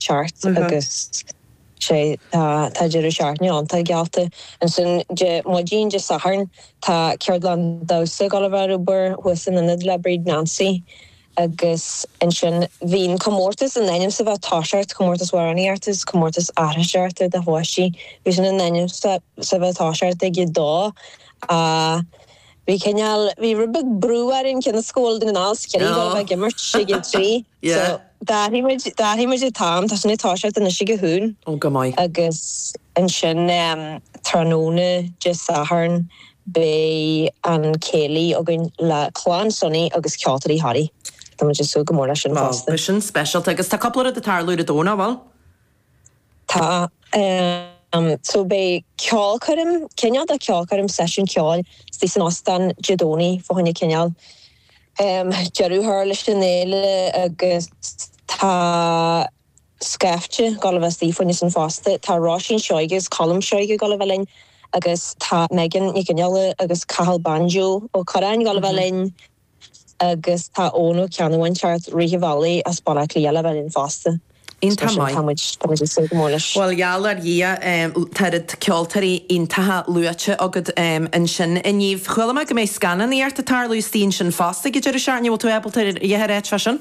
cheart agus sé tá tá deireadh seachtaine iontach geallta. Ansin Dé maidin Dé Sathairn tá ceardlann damhsa ag dul a bheith ar obair thuas san Ionad le Bríd Nancy agus ansin bhí an comórtas in ainm is a bheith ag toiseacht comórtas amhránaíocht is comórtas aithriseoireacht do pháistí bhí sin in ainm is a bheith ag toiseacht ag a dó a bhí cineál bhí rud beag brú orainn cionn is go bhfuil na gnáth scileanna ag imirt sé go trí. yeah. So, d'athraigh muid, d'athraigh muid, an t-am, tá sin ag toiseacht anois ag a haon. Oh, go maith. Agus ansin, em, tráthnóna Dé Sathairn, beidh an céilí againn le Clann Sonny agus Ceoltóirí Thoraí. Tá muid ag súil go mór leis sin fosta. Oh, beidh sin speisialta. Agus tá cúpla rud ag tarlú ar an Domhnach, an bhfuil? Tá. So beidh ceolchoirm, cineál de cheolchoirm, seisiún ceoil istigh san Ostán Dé Domhnaigh fá choinne cineál deireadh a chur leis an fhéile agus tá scaifte ag dul a bheith istigh fá choinne sin fosta. Tá Róisín Seoighe agus Colm Seoighe ag dul a bheith linn agus tá Megan Nic Fhionnghaile agus Cathal Banjo Ó Curráin ag dul a bheith linn. Agus tá Eoghan Ó Ceannabháin ag teacht rith an bhealaigh as Baile Átha Cliath le bheith linn fosta. Is mar sin, tá muid ag súil go mór leis. Bhuel, gheall ar Dhia, tá oiread ceoltóirí iontacha luaite agat ansin inniu. Chuala mé go mbeidh scannánaíocht ag tarlú istigh ansin fosta ag an deireadh seachtaine. An bhfuil tú ábalta a dhath a ráit faoi sin?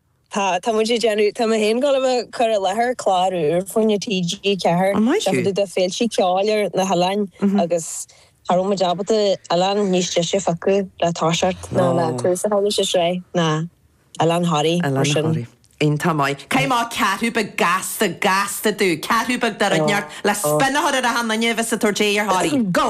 Tá, tá muid ag déanamh, tá mé féin ag dul a chur i láthair clár úr fá choinne TG4, Á maith thú! fá dtaobh de féilte ceoil ar na hoileáin agus cha raibh muid ábalta oileán níos deise a phiocadh le toiseacht ná le Ó. tús a chur leis an tsraith ná Oileán Thoraí, mar Oileán sin. Thoraí. Iontach maith. Caith amach ceathrú beag gasta, gasta domh, ceathrú beag de rud inteacht le spionnadh a chur ar achan nduine a bheas ag tabhairt aghaidh ar Thoraí? Go!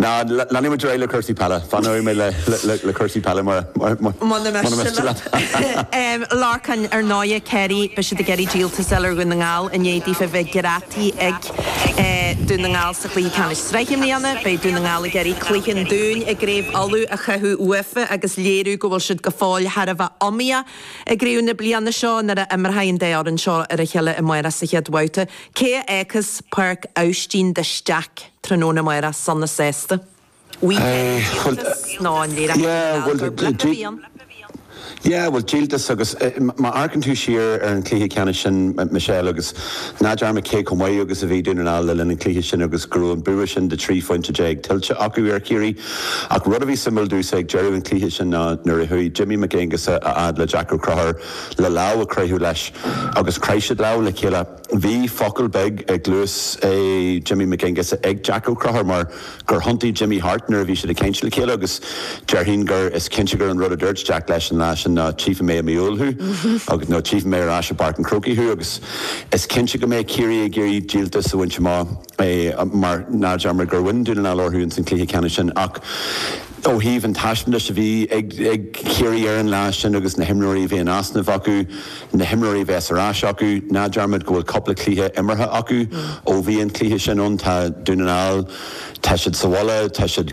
Now leanfaimid ar aghaidh le cúrsaí peile. Fanóidh mé le cúrsaí peile mura miste leat. Lorcán, Ar ndóighe, Ciarraí, beidh siad ag iarraidh díoltas a fháil ar Dhún na nGall i ndiaidh daofa bheith greadtaí ag Dún na nGall sa Chluiche Ceannais Sraithe i mbliana. Beidh Dún na nGall ag iarraidh cluiche an Dúin i gCraobh Uladh a chaitheamh uafa agus léiriú go bhfuil siad go fóill thar a bheith iomaíoch i gcraobh na bliana seo nuair a imreoidh an dá fhoireann seo ar a chéile amárach sa chéad bhabhta. Cé a fhágfas Páirc Aibhistín de Staic? Tráthnóna maith ar son na sásta. Weekend an díoltas nó an léireachas ar an algarve. Leap a bhí ann. Yeah, bhuel, díoltas agus, má amharcann tú siar ar an chluiche ceannais sin, Michelle, agus ná dearmad cé chomh maith agus a bhí Dún na nGall le linn an chluiche sin agus go raibh an bua sin de 13 phointe tuillte acu ar Chiarraí. Ach rud a bhí suimiúil domhsa ag deireadh an chluiche sin ná nuair a chuaigh Jimmy Mac Aonghusa a fhad le Jack Ó Conchúir le lámh a chroitheadh leis agus chroith siad lámh le chéile. Bhí focal beag i gcluas Jimmy McGuinness ag Jack Ó Conchúir mar gur thiontaigh Jimmy thart nuair a bhí siad ag caint le chéile agus déarfainn gur is cinnte gur an rud a dúirt Jack leis an lá sin ná tchífidh mé i mí Iúil thú agus nó tchífidh mé ar ais i bPáirc an Chrócaigh thú agus is cinnte go mbeidh Ciarraí ag iarraidh díoltas a bhaint amach mar ná dearmad gur bhain Dún na nGall orthu ins an chluiche ceannais sin ach ó thaobh an taispeántais a bhí ag Ciarraí ar an lá sin agus na himreoirí a bhí in easnamh acu. na himreoirí bheas ar ais acu. Ná dearmad go bhfuil cúpla cluiche imeartha acu ó bhí an cluiche sin ann. Tá Dún na nGall, tá siad sa mhullach, tá siad